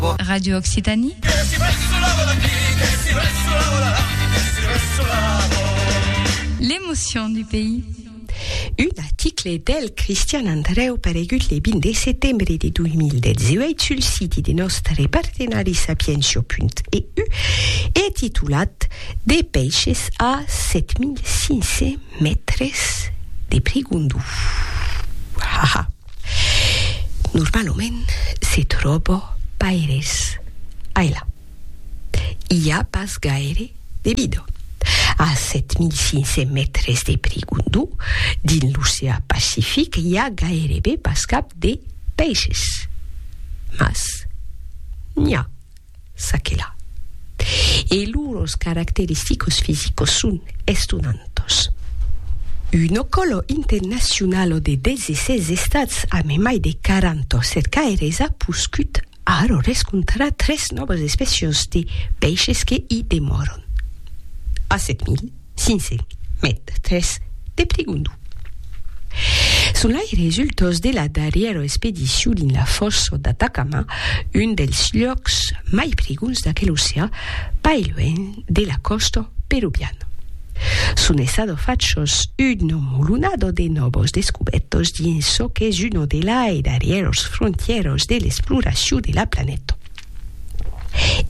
Pò. Radio Occitanie. Que si ressolava d'aquí, que si ressolava d'allà, que si ressolava. L'emotion du pays. Un article del Cristian Andrèu paregut le 20 de setembre de 2018 sul siti de nòstre partenari sapientia.eu e titulat De peishes a 7500 mètres de prigondó. Ha ha! Normalament se tròba paires ailà. I a pas gaire de vida. A 7.500 mètres de Prigondú, dins l'oceà Pacific, i a gairebe pas cap de peisses. Mas n'i a. S'aquela. E lors caracteristicos fisicos son estonantos. Uno colo internacionalo de 16 estats ame mai de 40 cercaires a poscut aro rescontrar tres nòvas especios de peishes que i demòron. A 7.000. Sinse, met tres, te prigundu. Son lai resultós de la darrièra expedicion dins la fòssa d'Atacama, un dels luòcs mai prigons d'aquel oceà, pas luènh de la còsta peruviana. Son essado fachós un nomolunado de nòvos descubètos dins çò qu'es una de lai darrièros frontièros de l'exploracion de la planeta.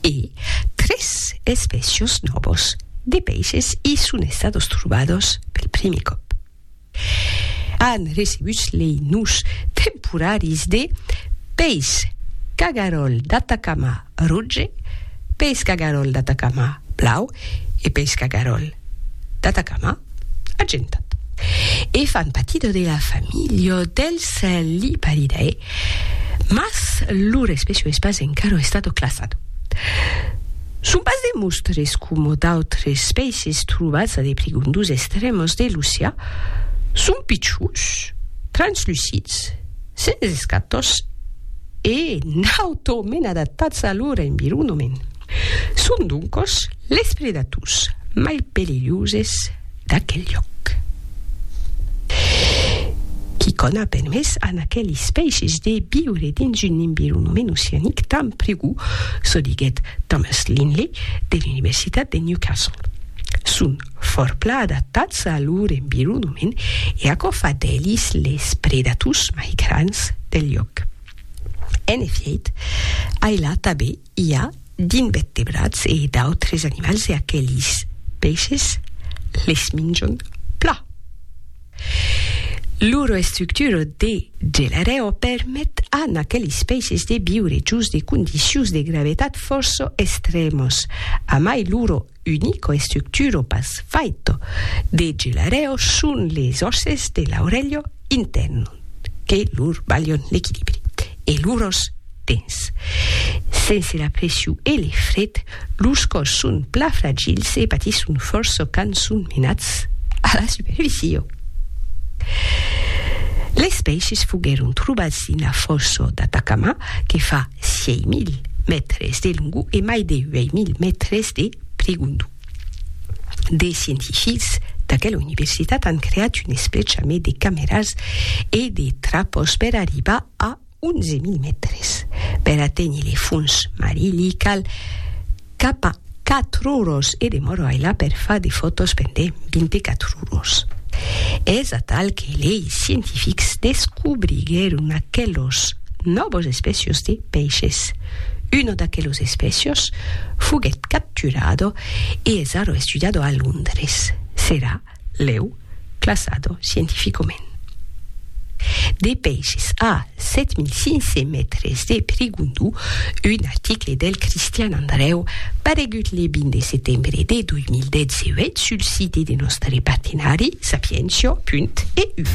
e tres espècios nòvos de peishes i son estados trobados pel primièr còp. An recebut lei nus temporaris de peis cagaròl d'Atacama roge, peis cagaròl d'Atacama blau e peis cagaròl d'Atacama. agentat. E fan patida de la familha del cèl Liparidae, mas lor espècia es pas encara estat classada. Son pas de mostres coma d'autres espècies trobats a de prigondus extrèmas de l'oceà, son pichons, translucids, sens escatòs e nautament adaptats a lor environament. Son doncos les predators mai perilhoses d'aquel lloc. Quicòm a permés a aquel espècies de viure dins un environament oceanic tan prigou, çò diguèt Thomas Linley de l'Universitat de Newcastle. Son fòrpla adaptats a lor environament e aquò fa d'elis les predators mai grands del lloc. En efièit, ai la tabé I a d'invettebrats e d'autres animals e aquelis peishes les minjon plan. Lor estructura de gelarèo permet a n'aquelis peishes de viure jos de condicions de gravetat fòrça estrèmas, amai lor Unico estructuro pas faito de gelareo son les òsses de l'aurelho intèrn que lor balhon l'equilibri e lor òs dens. Sense la pression e le fred, lors còs son plan fragils e patisson fòrça quand son menats a la superficie. Les pèishes foguèron trobats dins la fòssa d'Atacama que fa 6.000 mètres de longo e mai de 8.000 mètres de prigondu. De scientifics d'aquela universitat an creat un esplechamet de cameras e de trapòs per arribar a 11.000 mètres. Per aténher le fons marilh, i cal Capa quatruros e demoro ailà per far de fòtos pendent 24 uros. Es atal que lei scientifics descobriguèron aquelos nòvos espècios de peishes. Uno d'aquelos espècios foguèt capturado e es ara estudiado a Londres. Serà lèu classado scientificament. De pèishes a 7500 mètres de Perigondó, un article del Cristian Andrèu paregut le 20 de setembre de 2018 sul site de nòstre partenari sapientia.eu.